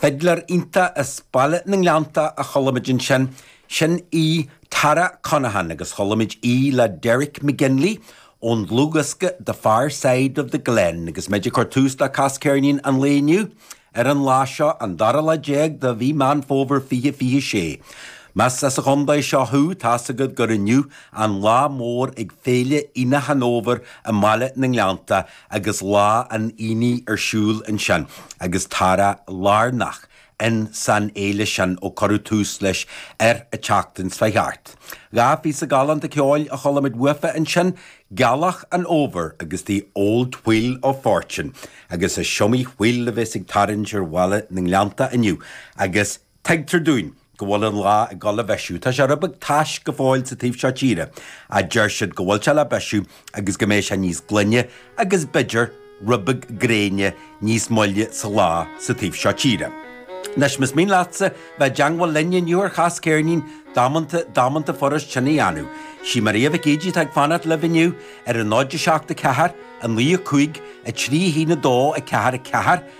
Fidléir iontach as Baile na nGleannta a chualaimid ansin, sin í Tara Connaghan agus chualaimid í le Derek McGinley ón dlúthdhiosca The Far Side of the Glen agus muid ag cur tús le Cas Ceirnín an lae inniu, ar an lá seo, an dara lá déag de mhí Meán Fómhair fiche fiche sé. Más as an gcontae seo thú, tá's agat gur inniu an lá mór ag Féile Aonach an Fhómhair i mBaile na nGleannta, agus lá an aonaigh ar siúl ansin agus Tara lárnach in san fhéile sin ó cuireadh tús leis ar an tseachtain seo chuaigh thart Dhá phíosa galánta ceoil a chualaimid uafa ansin, 'Gealach an Fhómhair' agus 'The Old Wheel of Fortune', agus is iomaí wheel a bheas ag tarraingt ar Bhaile na nGleannta inniu agus Tuigtear dúinn go bhfuil an lá ag dul a bhisiú. Tá sé rud beag tais go fóill sa taobh seo tíre, a deir siad, go bhfuil sé le bisiú agus go mbeidh sé níos glaine agus, b'fhéidir, rud beag gréine níos moille sa lá sa taobh seo tíre. Anois, más mian leatsa bheith i dteangmháil linn inniu ar Chas Ceirnín damanta, damanta furast sin a dhéanamh. Sí Maria Mhic Íde atá ag fanacht libh inniu ar an 0 7 4 9 5 3 1 2 4 4,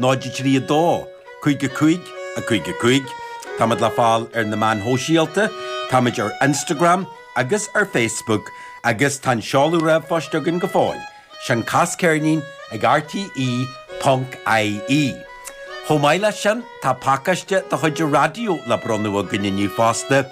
0 3 2 5 5 5 5 Táimid le fáil ar na meáin shóisialta, táimid ar Instagram agus ar Facebook agus tá an seoladh ríomhphoist againn go fóill, sin Cas Ceirnín ag RTÉ.ie. Chomh maith leis sin, tá pacáiste de chuid an raidió le bronnadh againn inniu fosta,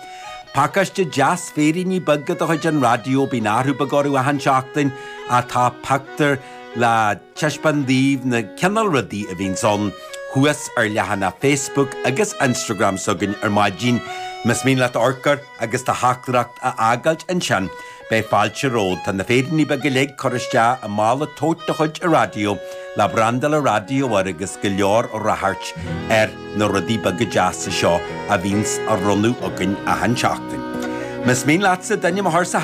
pacáiste deas féiríní beaga de chuid an raidió, bíonn athrú beag orthu achan seachtain, ach tá pictiúr le. taispeáint daoibh na cineál rudaí a bhíonns ann thuas ar leathanach Facebook agus Instagram s'againn ar maidin. Más mian leat amharc air agus do theachtaireacht a fhágáilt ansin, beidh fáilte romhat. Tá na féiríní beaga uilig curtha isteach i mála tote de chuid an raidió, le brandáil an raidió air agus go leor ráchairt ar na rudaí beaga deasa seo a bhíonns á bhronnadh againn achan seachtain. Más mian leatsa d'ainm a chur sa